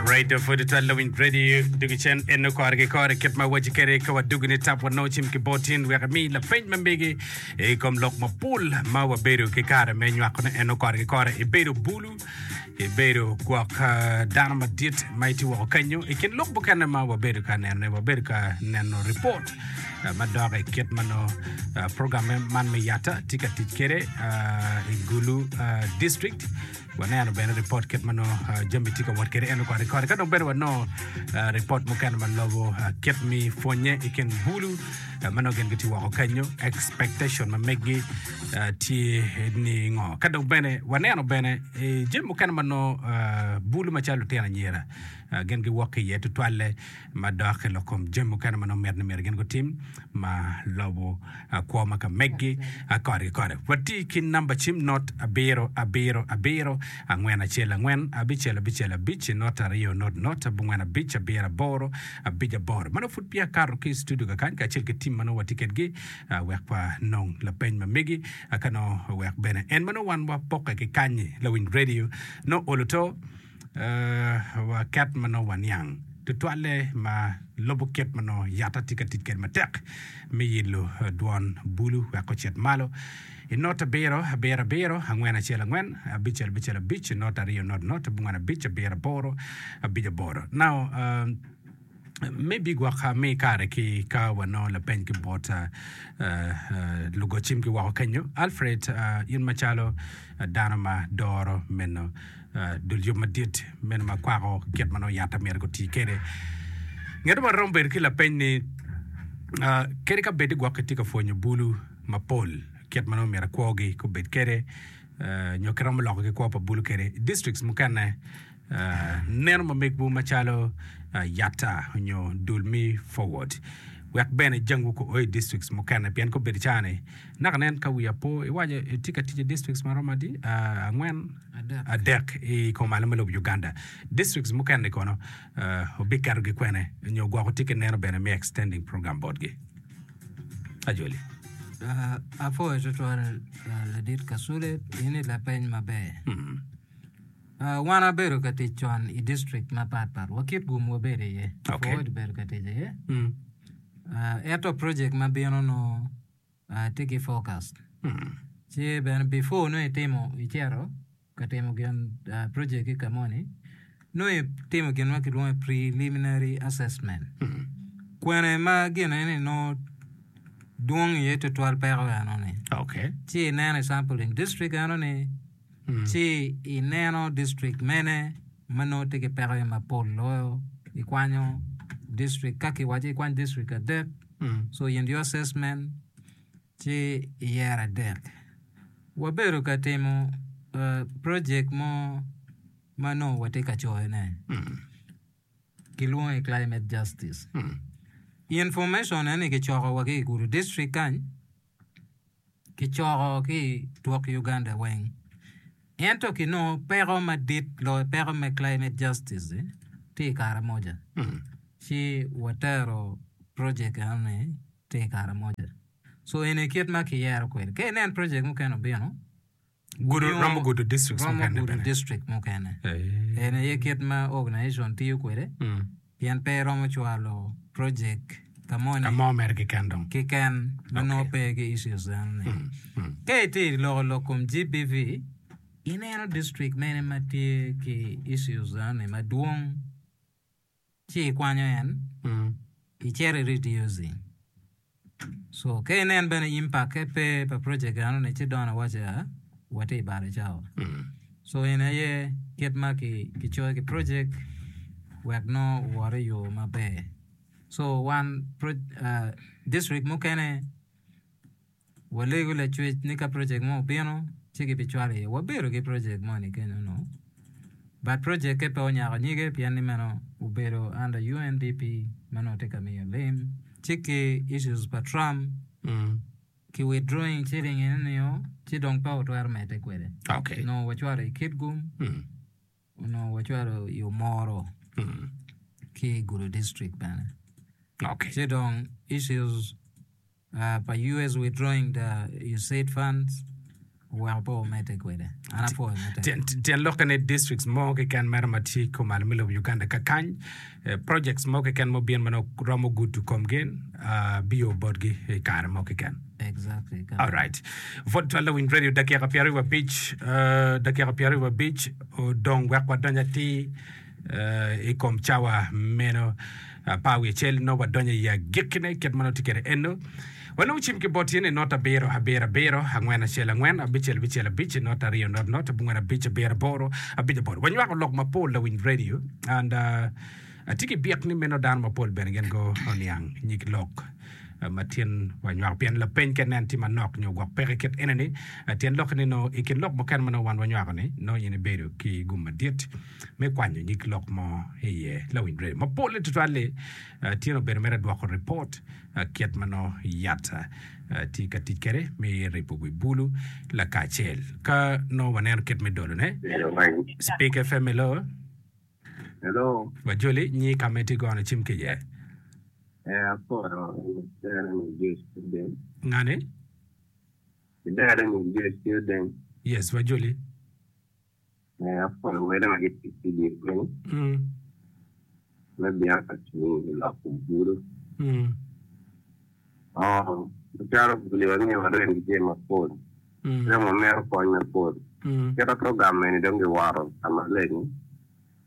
Radio for the Twelve Loving Radio dugi cen eno kore ki kore kit ma waci kere ka wadugi ni tap wano cim ki botin wek mi lapeny ma mege i kom lok mapol ma wabedo ki kare me nywakone eno kore ki kore ibedo bulu ibedo gwok ah, dano madit ma iti woko kenyo i kin lok mukene ma wabedo ka nenone wabedo ka neno ripot ah, ma dok i kit ma nongo ah, program man me yata tye ka tic kwede ah, i gulu ah, district Waneno bene ripot kit ma nongo jami tye ka wot kwede eno koni koni. Ka dong bene wanongo ripot mukene ma lobo kit mi pwonye i kin bulu ma nongo gin gitye woko kenyo, expectation ma meggi tye ni ngo. Ka dong bene waneno bene jami mukene ma nongo bulu macalo lutino anyira Gin giwok ki iye tutwalle madok i lok kom jami mukene ma nongo mit ni myero gin gutim ma lobo kwo ma ka megi kore ki kore. Wati ki namba cim not abiro abiro abiro angwen acel angwen abicel abicel abic not aryo not not abongwen abic abiro aboro abic aboro. Ma nongo pud peya akato ki i studio kakany kacel ki tim ma nongo wati kedgi wek wa nong lapeny ma megi ka nongo wek bene en ma nongo wan wapokke ki kany-ni lawiny redio nongo olo to. Waket ma nongo waniang tutwalle ma lubo kit ma nongo yatta tye ka tic kwede matek me yilo dwon bulu wek ocit malo. I not abiro, abiro, abiro, angwen, acel, angwen, abic, abicel, abic, not aryo, not, not, abongwen, abic, abiro, aboro, abic, aboro. Now, uh, me bigwoka me kare ki ka wanongo lapeny ki bot lugocim ki woko kenyo. Alfred, in macalo dano ma doro meno dul yub madit meno ma kwako kit ma nongo yat amyero guti kede, ngeto ma romo bedo ki lapeny ni kadi ka bed ni gwok kitye ka pwonyo bulu mapol kit ma nongo myero kwogi obed kede nyo kiromo loko ki kwo pa bulu kede districts mukene neno mamegwu macalo Yatta nyo dul me Forward wek bene jangwu ko o i districts mukene pien ka obedo icaa ni naka nen ka wiya po iwaco itye ka tic i districts ma romo adi angwen adek i kom alo me lobo Uganda districts mukene-ni kono obiketogi kwene nyo gwoko tye ki neno bene me extending program botgi Ajoli. Apoyo tutwal Ladit Kasule, in i lapeny maber. Wan wabedo ka tic con i distrikt mapat pat wa kit gum wabedo iye. Okay. Ford bedo ka tic iye. Mm. Uh, ento project ma bino no uh, tye ki focus. Mm. Ci bene before no itimo icero ka timo gin uh, project ki kamoni no itimo gin ma kilwongo preliminary assessment. Mm. Kwene ma gine ni no dwong iye tutwal peko eno ni. Okay. Ci ineno sample in district eno ni Ci ineno district mene ma nongo tye ki pekone mapol loyo, ikwanyo district, ka kiwaco ikwany district adek, so in your assessment ci iyero adek. Wabedo ka timo project mo ma nongo watye ka coyone, kilwongo ni climate justice. Information-ne-ni kicokowa ki i Gulu district kany. kicoko ki i twok Uganda weng. Ento kinongo peko madit loyo peko me climate justice tye i Karamoja, ci watero project enoni tye i Karamoja. So eni kit ma kiyero kwede. Ka inen project mukene obino, Gudo, romo gudo districts romo mukene gudo bene. district mukene. Eh. En aye kit ma organization tiyo kwede Mm. pien pe iromo cwalo project ka moni Ka mo mere keken dong. kiken ma nongo Okay. pe ki issues dano ni. Mm. Mm. Ka itye i loko lok kom GBV, ineno district mene ma tye ki issues dano ni madwong ci ikwanyo en icito irid usi so ka inen bene impakke pe pa project eno ni ci dong awaca wati ibalo cawa so eni aye kit ma ki coyo ki project wek nongo owot i yo maber so wan district mukene Walego lacwec ni ka project mo obino ci ki bi cwalo iye. Wabedo ki project mo ni kenyo no. But project ke pe onyako nyige pien ni meno obedo under UNDP ma nongo tye ka miyo lim. Ci ki issues pa Trump ki withdrawing shilling eno nio ci dong pe otwero medde kwede. Okay. Nongo wacwalo i Kitgum. Onongo wacwalo yo moro ki i Gulu district bene. Okay. Ci dong issues uh, pa US withdrawing the USAID funds oweko po omedde kwede. An apwoyo mete. Tyen, tyen lokke ni districts mo keken mere ma tye i kom al me lobo Uganda kakany Projects mo keken ma obin ma nongo romo gudo komgi biyo botgi i kare mo keken. Exactly. All right. Vot Twal Lawiny Radio dakika pyero aryo abic dakika pyero aryo abic odong wek wadony atir i kom cawa meno. Par wi acel nongo wadonyo i agikkine kit ma nongo tye kwede eno. Wanongo cim ki bot tyen i not abiro abiro abiro, angwen acel angwen, abicel bicel abic, i not aryo not not, abongwen abic abiro aboro, abic aboro. Wanywako lok mapol lawiny radio and uh, atye ki byek ni meno dano mapol bene gin go oniang nyig lok uh, ma tyen wanywako pien lapeny ka nen tye manok nyo gwok peke kit ene ni uh, tyen lokke ni nongo i kin lok mukene ma nongo wan wanywako ni nongo in ibedo ki gum madit me kwanyo nyig lok mo iye lawiny radio mapol ni tutwal-li Tyen obedo mere dwoko ripot kit ma nongo yat tye ka tic kwede me ripo wi bulu lakacel. Ka nongo waneno kit me dolone, Speak FM hello. Hello. Wa joli nyi ka ma itye gono cim ki iye. Eh, apoto. Dera ni Josh Odeng. Ngani? Dera ni Josh Odeng. Yes, wa joli. Me apol wele ma gitic ki dye piny. Me bino ka cung i lok bulu. Macalo Biblia miyo warem ki jami mapol, dong wamito kony mapol. Kit atwo gamme-ni dong giwoto ka maleng.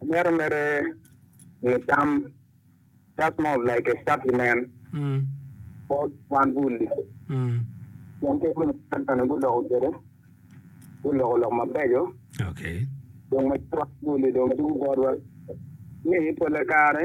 Omyero mere nge tam just more of like a supplement for kwan bul ni pien kit ma lucan ni guloko kwede guloko lok mabeco dong macok bul ni dong tugo botwa ni pole kare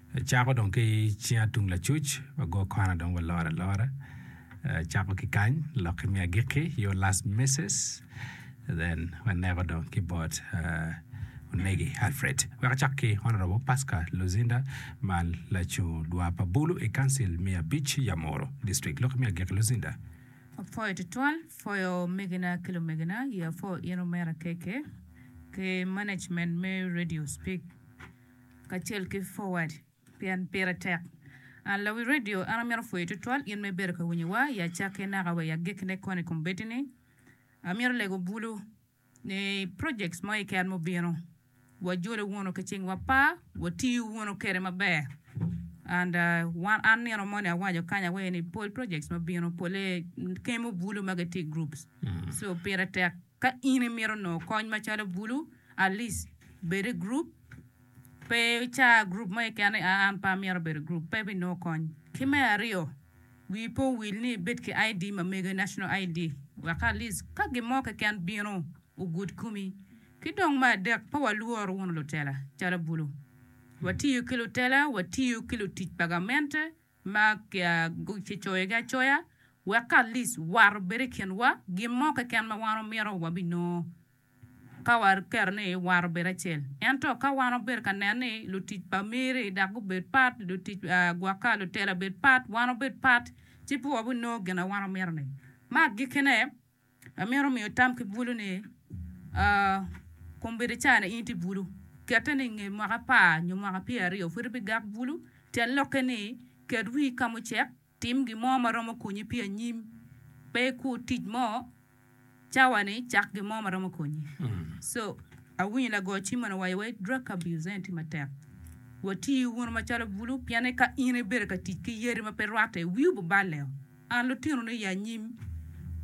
Acako dong ki cinga tung lacuc, ago kona dong walor alora. Acako ki kany, lok imi agikki, your last misses, then waneko dong ki bot uh, Onegi Alfred. Wek acak ki Honorable Pasca Luzinda ma lacung dwa pa Bulu i Council me abic Yamoro District. Lok imi agikki Luzinda. Apwoyo tutwal, pwoyo omegina ki lumegina, ye apwoyo in omera KK ki management me Radio Speak. kacel ki Forward pien pire tek. An lawi redio, an amito pwoyi tutwal in ma ibedo ka winyo wa i acakke naka wa i agikki ne kono i kom bedi ni amito lego bulu ni projects mo keken mubino wa jolo wunu ki cing wa par wa tiyo wunu kede maber and wan an nino moni awaco kany awaco ni pol projects mabino pole kemo bulu ma gitye i groups so pire tek. Ka in imito nongo kony macalo bulu, alic bed i gurup. Pe ica gurup mo keken ni aa an pe amyero bedo i gurup, pe ibinongo kony. Ki me aryo, wii pe owil ni ibed ki ID ma mege, National ID, wek ka alic ka gin mo keken bino, ogud komi. Ki dong me adek, pe walwor wunu lutela calo bulu. Watiyo ki lutela, watiyo ki lutic pa gamente, ma kicoyogi acoya wek ka Alic war obed i kinwa, gin mo keken ma wan omyero wabinongo ka waketo ni war obed acel. Ento ka wan wabedo ka neno ni lutic pa Meri dok gubed pat, lutic gwokka, lutela bed pat, wan wabed pat, ci pe wabinongo gin ma wan omyero-ni. Me agikkine, Amito miyo tam ki bulu ni, kombeddi ca ni in ti bulu, kette ni inge mwaka apar nyo mwaka pyer aryo pud ibi gak bulu. Tyen lokke ni, ket wii ka mucek, tim gin mo ma romo konyi pi anyim. Pe ikur tic mo cawa ni, cak gin mo ma romo konyi. So, awinyo lago cim moni owaco wa ni drug abuse eni ti matek. Wati wunu macalo bulu pien ni ka in ibedo ka tic ki yadi ma pe rwatte, wii obiballe o. An lutinoni i anyim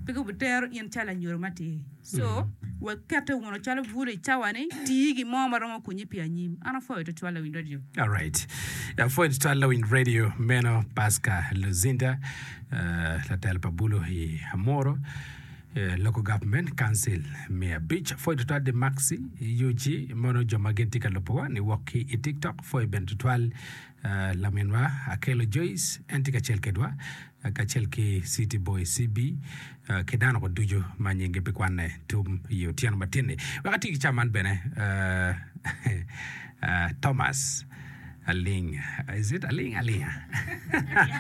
pe gubitero in calo anyodo matir. Co, wek kette wunu calo bulu i cawani, tii gin mo ma romo konyi pi anyim. An apwoyo tutwal lawiny radio. Alright. Apwoyo tutwal lawiny radio meno Pasca Luzinda, eh, latelo pa bulu i Amuru, eh, Local Government Council me abic. Apwoyo tutwal di Maxi UG mono jo ma gin tye ka lubowa ni wok ki i TikTok. Apwoyo bene tutwal Laminwa Akello Joyce en tye kacel kedwa kacel ki City Boy CB ki dano ko ducu ma nyingi pe kwanne tum i otyeno matin-ni. Wek ati ki cam man bene Thomas Aling is it Aling Alinga?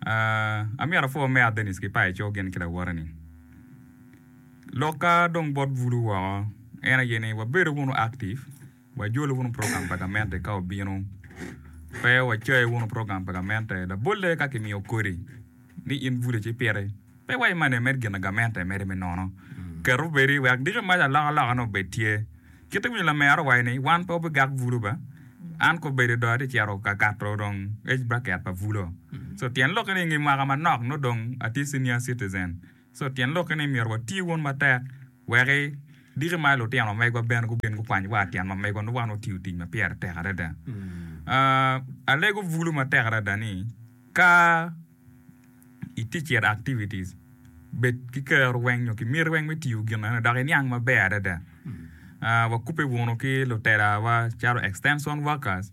Amyero apwor me a Dennis ki Paeco gin ki lawote ni. Lokka dong bot bulu woko en aye ni wabedo wunu active, wajolo wunu program pa gamente ka obino, pe wacayo wunu program pa gamente labolle ka kimiyo kodi ni in bule ci piti, pe waimane med gina gamente mede me nono. Ket obedi wek diki mac alokaloka ni obed tye. Kite winyo lamera owaco ni wan pe wabigak bulo ba, an ka obedo do atye cito ka kato dong age bracket pa bulo. So tyen lokke ni nge mwaka manok nongo dong atye senior citizen. So tyen lokke ni myero wati wun matek weki diki ma lutino megwa bene gubin gukwany wa tyen ma megwa nongo wan watiyo tic ma pyere tek adada. Alego bulo matek adada ni ka i teacher activities bed ki kero weng nyo ki miti weng me tiyo gin eno dok iniang maber adada wakubbe wunu ki lutelawa calo extension workers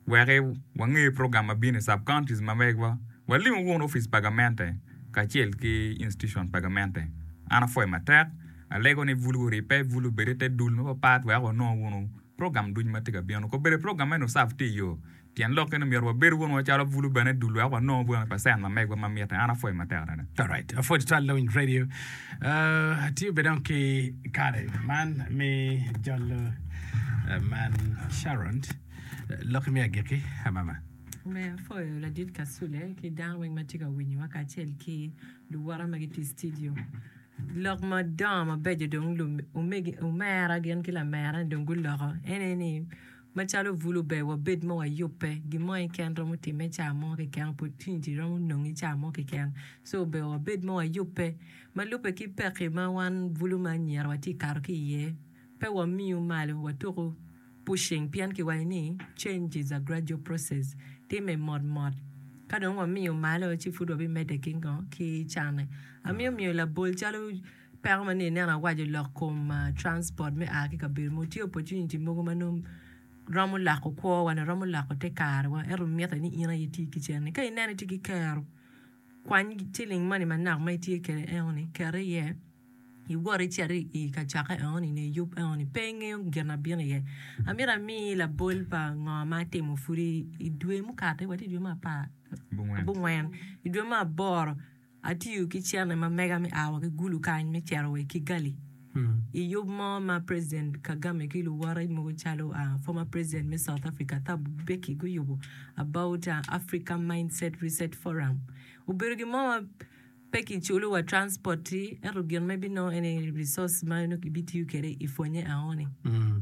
wek wange program ma bino i sub counties ma megwa walimu wunu opic pa gamente kacel ki institution pa gamente an apwoyo matek alego ni bulu wuribbe bulu wubed i te dul mapat pat wek wunongo wunu program ducu ma tye ka bino kobeddi program eno serve tye i yo Tyen lok eni omyero wabed wunu calo bulu bene dul wek wanong bweno pa cent ma megwa ma mitte. An apwoyo matek adada. Alright, apwodo tutwal Lawiny Radio. Atye bene dong ki kare man me jolo man Sharon. Lok imi agikki amama. Me apwoyo Ladit Kasule ki dano weng ma tye ka winyowa kacel ki luwota ma gitye i citidio. Lok madongo mabeco dong omegi omera gin ki lamera ni dong guloko en aye ni Macalo bulu ber wabed ma wayubbe, gin mo keken romo timme caa mo keken, opportunity romo nonge caa mo keken, so ober wabed ma wayubbe. Ma lubbe ki pekki ma wan bulu ma anyira watye ka kato ki iye, pe wamiyu malo, watuku pushing pien kiwaco ni change is a gradual process, timme mot mot. Ka dong wamiyo malo ci pud wabimedde ki ngo? Ki canne. Amiyo miyo labol calo. Peko ma ni ineno awaco lok kom transport me a ki kabedo mogo tye opportunity mogo ma nongo romo loko kwo wa nyo romo loko te kare wa ento mitte ni in aye iti kicen ni. Ka ineno itye ki kero kwany ciling moni manok ma itye kwede enoni ket iye iwot icit i kacokke enoni nyo iyub enoni pe ingeyo gin ma bino iye. Amito ami labol pa ngo ma atimo pwod i dwe mukati watye i dwe me apar abongwen i dwe me aboro Atiyo ki cente ma mega me a wa ki Gulu kany me cito wa i Kigali i yub mo ma President Kagame ki luwote mogo calo Former President me South Africa Thabo Mbeki guyubo about Africa Mindset Reset Forum. Obedo gin mo ma pe kiculo wa transport ki ento gin ma ibinongo ene resource ma nongo ibitiyo kwede i pwonye aoni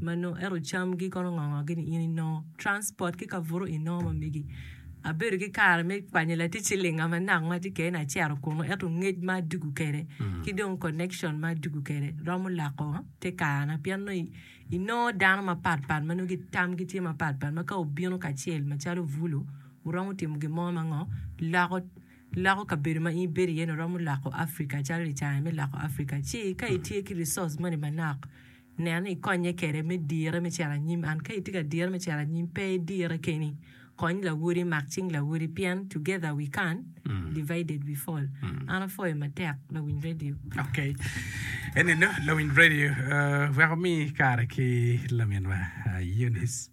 ma nongo ento camgi kono ngo ngo gini in inongo transport ki kabuto inongo ma megi. Abedo ki kare me kwanyo latic cilinga manok ma tye kene acito kunu ento ngec ma adwogo kwede ki dong connection ma adwogo kwede romo loko te karana pien nongo inongo dano mapat pat ma nongo tamgi tye mapat pat ma ka wubino kacel macalo bulu wuromo timo gin mo ma ngo loko loko kabedo ma in ibedo iye-ni wuromo loko Africa calo licare me loko Africa ci ka itye ki resource moni manok Nen, ikonye kede me dire me cito anyim. An, ka itye ka dire me cito anyim, pe idire keni. Kony lawodi, mak cing lawodi, pien together we can, divided we fall. An apwoyo matek lawiny radio. Ok, eninu lawiny radio wek wumi kare ki laminwa Eunice.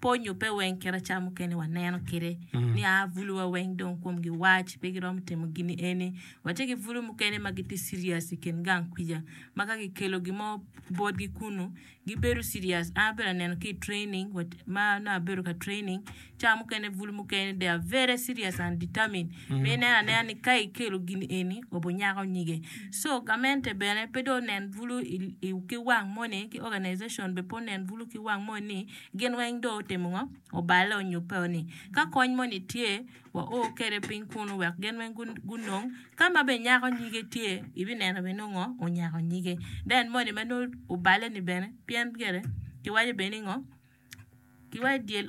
Pe onyubbe weng kit aca mukene waneno kite ni a buluwa weng dong komgi wac pe giromo timo gini eni. Watye ki bulu mukene ma gitye serious i kin gang kwica ma ka kikelo gin mo botgi kunu gibedo serious. An abedo ka neno ki i training ma nongo abedo ka training ca mukene bulu mukene they are very serious and determined ma ineno anena ni ka ikelo gini eni obinyako nyige. So gamente bene pe dong onen bulu ki wang moni ki organization bene pe onen bulu ki wang moni. Gin weng dong otimo ngo? Oballe onyubbe o ni ka kony moni tye wa o kede piny kunu wek gin weng gunong ka ma bene nyako nyige tye i bi neno bene nongo ngo? Onyako nyige then moni ma nongo oballe ni bene pien gire ki waco bene ni ngo? Ki waco dyel.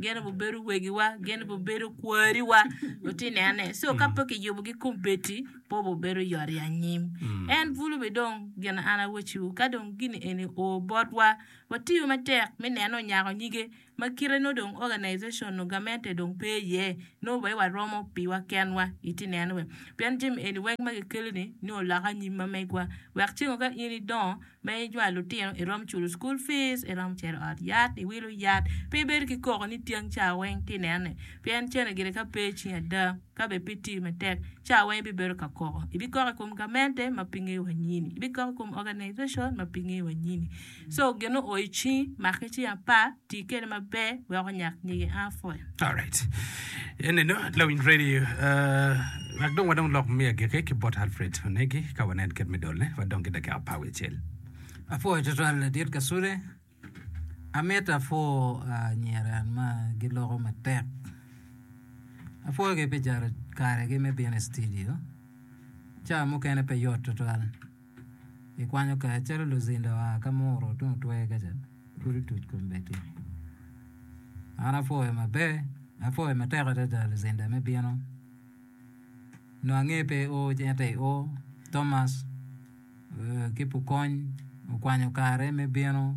gin obin bedo wegiwa gin obin bedo kwariwa wati nene so ka pe kiyubo gi kombeddi pe obin bedo yot i anyim en bulu be dong gin an awaci wu ka dong gini eni oo botwa watiyo matek me nene onyako nyige ma kite nongo dong organization nongo gamente dong pe iye nongo wai waromo piwa kenwa iti nene pien jami eni weng ma kikelo ni nongo loko anyim ma megwa wek ceng ka in idongo Me ijwal lutino irom culo school fees, irom cito ot yat iwilo yat pe ibedo ki koko ni tyeng ca weng ti nene pien cene gire ka pe icing ada ka be pe iti matek ca weng ibibedo ka koko ibikoko i kom gamente ma pinge wa nyini ibikoko i kom organization ma pinge wa nyini so gin o o icingi make cing apa Ti kede maber wek onyak nyige apple. Alright. Eneno lawiny radio lak dong wadong lok me agiki ki bot Alfred Onegi ka wanen kit me dolne wadong ki dakika apar wiye acel. Apwoyo tutwal Ladit Kasule. Amito apwo anyira ma giloko matek. Apwoyogi pi jaro karegi me bino i studio. Ca mukene pe yot tutwal. I kwanyo kare calo luzinda oa ka muro tung otwer ka ca, pud otuc kom bene tung. An apwoyo maber, apwoyo matek adada luzinda me bino. Nongo ange pe i ur ci en aye i ur. Thomas ki Pukony okwanyo kare me bino.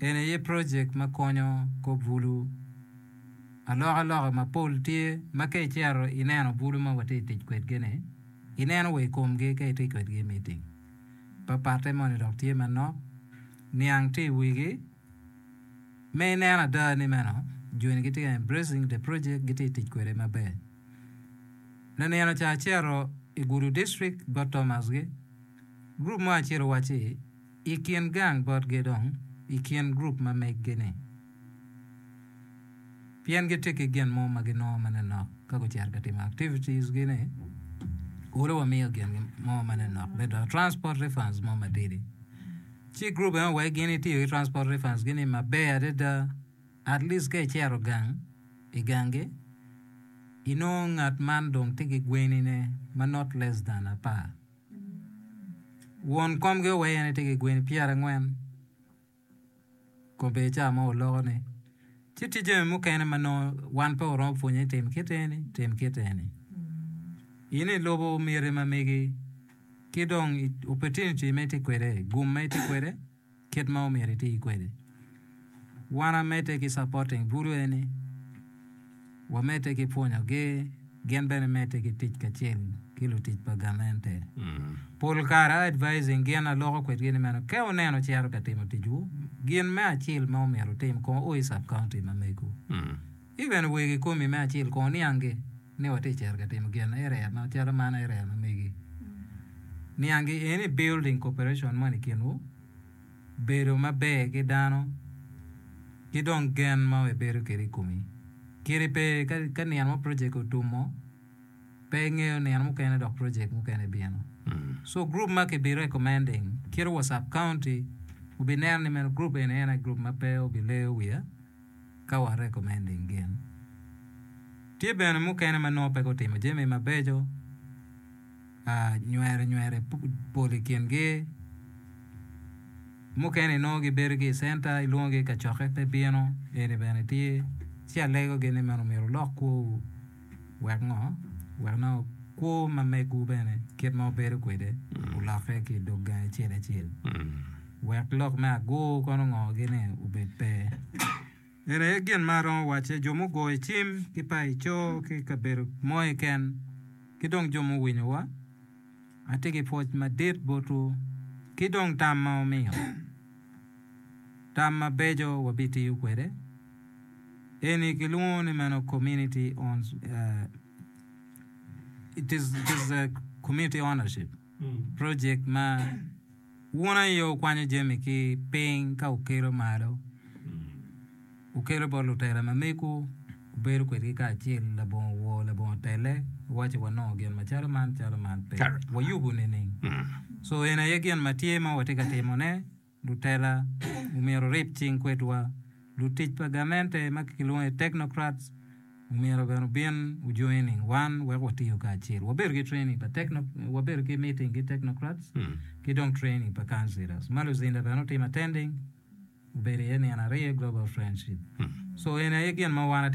En aye projek ma konyo kop bulu. Alokaloka mapol tye ma ka icito ineno bulu ma watye ka tic kwedgi-ni, ineno wa i komgi ka itye kwedgi i miting. Papatte moni dok tye manok, niang tye i wigi me inen ada ni meno joni gitye ka embracing the project, gitye ka tic kwede maber. Lanino ca acito i Gulu District bot Thomas-gi, gurup mo acel owacci, I kin gang botgi dong i kin gurup ma meggi-ni, pien gitye ki gin mo ma ginongo ma ninok ka gucito ka timo activities-gi-ni, kulu wamiyo gin mo ma ninok me dongo, transport refunds mo matidi. Ci gurup eno wek gin itiyo ki transport refunds-gi-ni maber adada, at least ka icito gang, i gang-gi, inongo ngat man dong tye ki gwenine ma not less than apar. Won komgi oweye ni tye ki gweni pyerangwen kobedi ca mo oloko ni ci tye jami mukene ma nongo wan pe waromo pwonye ni tim kit eni tim kit eni in ilubo miti ma megi ki dong opportunity ma itye kwede gum ma itye kwede kit ma omyero iti kwede. Wan amedde ki supporting bulu eni, wamedde ki pwonyogi, gin bene medde ki tic kacel ki lutic pa gamente. Pol kare a advising gin aloko kwedgi ni meno ke wuneno cito ka timo ticwu, gin me acil ma omyero wutim kong o i sub-county ma megu. In bene wer kikomi me acel kong niangi ni watye cito ka timo gin area macalo man area ma megi. Niangi eni building cooperation moni kinwu, bedo maber ki dano ki dong gen ma ibedo kede ikomi. Kiri pe ka nino mo project otumo pe ingeyo nino mukene dok project mukene bino. So group ma ki bi recommending kit wa sub county obi neno ni meno group eni en aye group ma pe obi leyo wiya. ka wa recommending gin. Tye bene mukene ma nongo pe gutimo jami mabeco, nywere nywere pol i kingi, mukene inongo gibedo ki i center ilwongogi i kacokke pe bino, eni bene tye, ci alegogi ni meno myero wulok kwowu. Wek ngo? Wek nongo kwo ma megwu bene kit ma wubedo kwede olokke ki i dog gangi acel acel, wek lok me agur kono ongogi ni obed pe. Eni aye gin ma aromo wacce, jo mugoyo cim ki paco ki i kabedo mo keken, ki dong jo muwinyowa, atye ki pwoc madit botwu, ki dong tam ma wumiyo, tam mabeco wabitiyo kwede. Eni kilwongo ni meno community owns, uh, it is, it is a community ownership project ma wun aye okwanyo jami ki piny ka wukelo malo, wukelo bot lutela ma megu, wubedo kwedgi kacel labongo wor, labongo tele, waci wanongo gin macalo man, calo man pe. Correct. Wayubo nining? So eni aye gin ma tye ma watye ka timone. lutela omyero orib cing kwedwa, lutic pa gamente ma kilwongo ni technocrats omyero bene obin o joining wan wek watiyo kacel. Wabedo ki training pa techno, wabedo ki meeting ki technocrats ki dong training pa councillors. Ma luzinda bene otim attending obedo iye nino aryo i global friendship. So eni aye gin ma wan ati